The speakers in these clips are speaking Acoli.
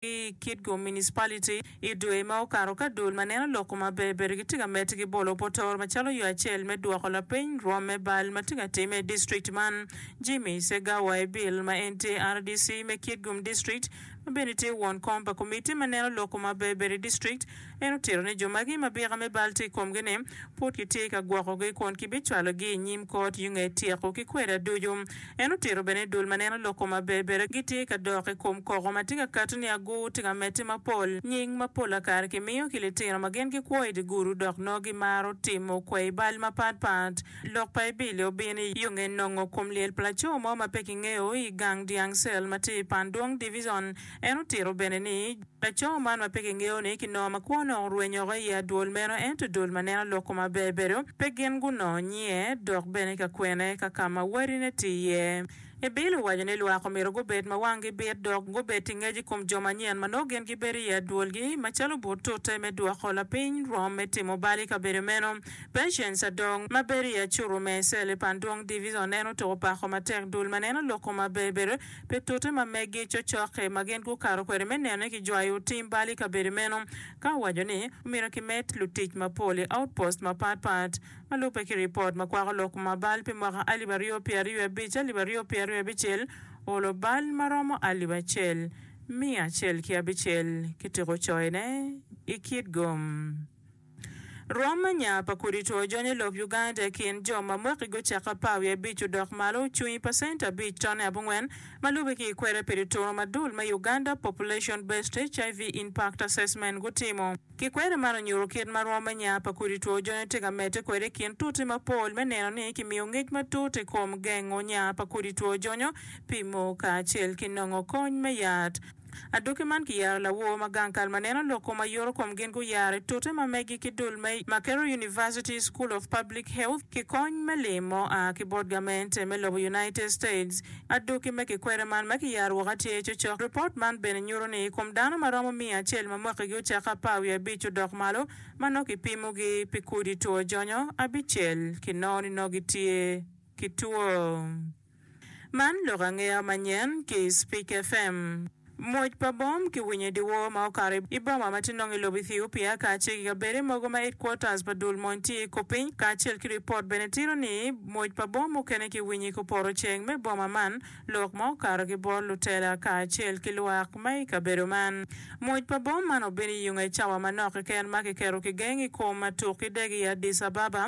ki i Kitgum Municipality i dwe ma okato ka dul ma neno lok ma ber ber gitye ka medde ki bolo potoro macalo yo acel me dwoko lapeny rwom me bal ma tye ka timme i district man. Jimmy Segawa Ebil ma en tye rdc me Kitgum District ma bene tye won kom pa komitti ma neno lok ma ber ber i district En otito ni jo magi ma bika me bal tye i komgi ni, pud kitye ka gwokogi kun kibicwalogi i nyim kot yung ei tyeko ki kweda ducu. En otito bene ni dul ma neno lok kome aberber-ri gitye ka dok i kom koko ma tye ka kati ni agur tye ka medde mapol. Nying ma pola kare kimiyo ki litino ma gin gikwo i dye gudu dok nongo gimaro timo kwai bal mapatpat. Lok pa Ebili obino i yo nge nongo kom lyel pa laco mo ma pe kingeyo i gang dyang cell ma tye i Pandung Division. En otito bene ni, Laco man ma pe kingeyo-ni ki nongo ma kwo onongo orwenyoko i adwol meno, ento dul ma neno lok koma ber bedo pe gin gunongo nyiye, dok bene ka kwene ka ka ma wadine tye iye. Bill owaco ni lwak omyero gubed ma wanggi bit dok gubed ki ngec i kom jo manyen ma nongo gin gibedo i adwolgi, macalo but tute me dwoko lapiny rwom me timo bal i kabedo meno. Patience Adong, ma bedo i acuru me Cell i Pandong Divison, en otuko pako matek dul ma neno lok koma ber bedo pi tute ma megi cocokke ma gin gukato kwede me nene ki jwayo tim bal i kabedo meno, ka owaco ni omyero kimed lutic mapol i outpost mapat pat ma lubbe ki ripot ma kwako lok ma bal pi mwaka alip aryo pye aryo wiye abic, alip aryo pye aryo wiye abicel oolo bal ma romo alip acel miya acel ki abicel ki tiko coyone i kit gom. Rwom anya pa kodi two jony i lob Uganda i kin jo ma mwaki gucako apar wiye abic odok malo cung i pacent abic tone abongwen ma lube ki i kwere pi dituro ma dul me Uganda Population Based HIV Impact Assessment gutimo. Ki kwere man onyuto kit ma rwom anya pa kodi two jony tye ka medde kwede i kin tuti mapol me neno ni kimiyo ngec matut i kom gengo nya pa kodi two jonyo, pimo kacel ki nongo kony me yat. Adoki man kiyero lawor ma gang kal ma neno lok kom aye oro kom gin guyaro i tute ma megi ki dul me Makerere University School of Public Health ki kony me lim ma oa ki bot gamente me lobo United States. Adoki me kikwede man me kiyaro woko aye tye cocok. Ripot man bene nyuto ni i kom dano ma romo miya acel ma mwakigi ocake apar wiye abic odok malo ma nongo kipimogi pi kudi two jonyo abicel kinongo ni nongo gitye ki two Man lok angeya manyen ki i Speak FM. Mwoc pa bom kiwinyo i dyewor ma okato i boma ma tye nongo i lobo Ethiopia kacel ki kabedde mogo ma headquarters pa dul mon tye i Kopiny kacel ki ripot bene tito ni mwoc pa bom mukene kiwinyo i kupoto ceng me boma man lok ma okato ki bot lutela kacel ki lwak ma i kabedo man. Mwoc pa bom man obino i onge cawa manok keken ma kiketo kigeng i kom atuk ki dege i Addis Ababa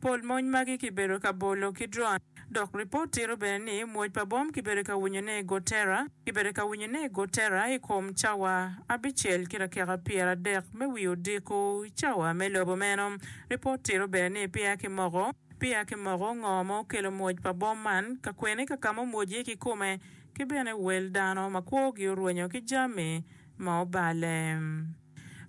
Pol mony magi kibedo ka bolo ki dron, dok ripot tito bene ni mwoc pa bom kibedo ka winyone i Gotera, kibedo ka winyone i Gotera i kom cawa abicel ki dakika pyeradek me wi odiko i cawa me lobo meno. Ripot tito bene ni peya kimoko peya kimoko ngo ma okelo mwoc pa bom man, kakwene ka kama omwoc iye kikome, ki bene wel dano ma kwogi orwenyo ki jami ma obale.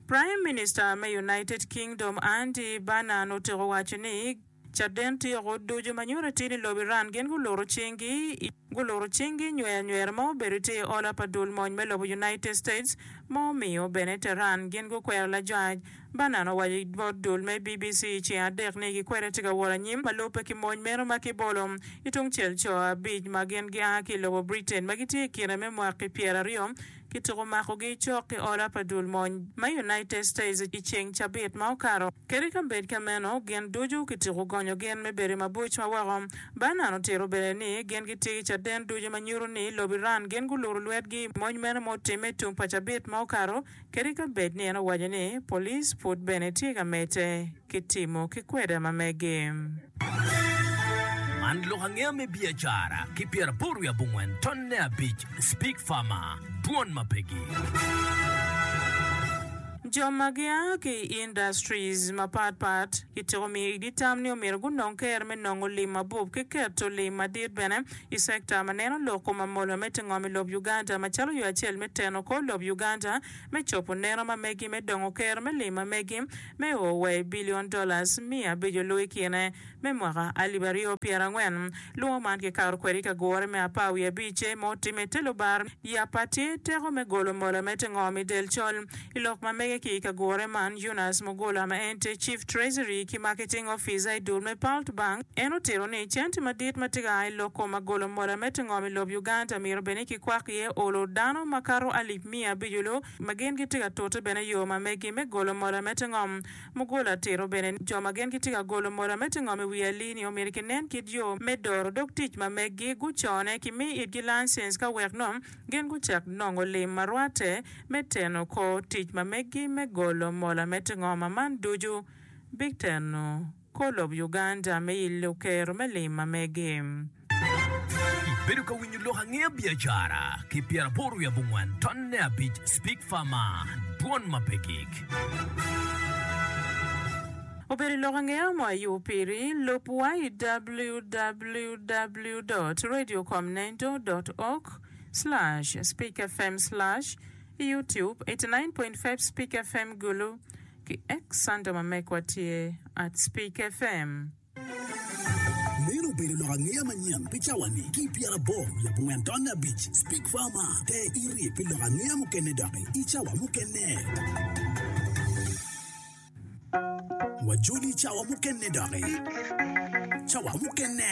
Praim Minista me United Kingdom Andy Burnham otyeko waco ni caden tyeko ducu ma nyuto atir ni lobo Iran gin guluro cinggi i guluro cinggi i nywera nywera ma obedo tye i ola pa dul mony me lobo United States ma omiyo bene Tehran gin gukwero lajwaj. Burnham owaco i bot dul me BBC i ceng adek ni gikwede tye ka wot anyim ma lubbe ki mony meno ma kibolo i tungcel co abic ma gin gia ki i lobo Britain ma gitye i kine me mwaki pyera aryo Kityeko makogi cok ki oda pa dul mony ma United States i ceng cabit ma okato. Kadi ka bed ka meno, gin ducu kityeko gonyo gin me bedo i mabuc ma woko. Barnan otito bene ni gin gitye ki caden ducu ma nyuto ni lobo Iran gin guluro lwetgi i mony meno ma otimme tung pa cabit ma okato, kadi ka bed ni en owaco ni police pud bene tye ka medde. ki timo ki kweda ma mege. Man lok angeya me biacara ki pyeraboro wiye abongwen tonne abic Speak Farmer, Dwon ma pe gi. Jo ma gia ki i industries mapat pat kitiko miyo idi tam ni omyero gunong ker me nongo lim mabup ki keto lim madit bene i sector ma neno lok kom amola me tingom i lob Uganda macalo yo acel me teno kor lob Uganda me cobo neno ma megi me dongo ker me lim ma megi me o wa i billion dollars miya abico luw i kine me mwaka alip aryo pyera angwen luwo man ki kato kwede i ka gure me apar wiye abice ma otime ite lubar yappa tye teko me golo mola me te ngom i del col i lok ma mege ki i ka gure man Eunice Mugula ma en tye chief treasury ki marketing officer i dul me Palt bank en otito ni centi madit ma tye ka a i lok koma golo mola me te ngom i lob Uganda mito bed ni ki kwak iye olo dano ma kato alip miya abico luw ma gin gitye ka tute bene yo ma megi me golo mola me te ngom. Mugole atito bene ni jo ma gin gitye ka golo mola me te ngom i wi alii-ni omyero kinen kit yo me doro dog tic ma megi gucone ki mi itgi lancens ka wek nong gin gucak nongo lim ma rwate me teno kor tic ma megi me golo mola me te ngom ma man ducu biteno. Kor lob Uganda me i Luker me lim ma mege. Ibedo ka winyo lok angeya biacara ki pyera aboro wiye abongwan ton ne abic speak far ma dwon ma pe gig. Obedo i lok angeya mo ayu piri. Lub wa i www dot radio com nendo dot org slash speak fm slash youtube eighty nine point five speak fm gulu. Ki ex Santa ma megwa tye at Speke FM. Meno obedo lok angeya manyen pi cawani ki i pyeraboro i abongwen tonne abic. Speke FM a, te irye pi lok angeya mukene doki i cawa mukene. Wajoli i cawa mukene doki. Cawa mukene.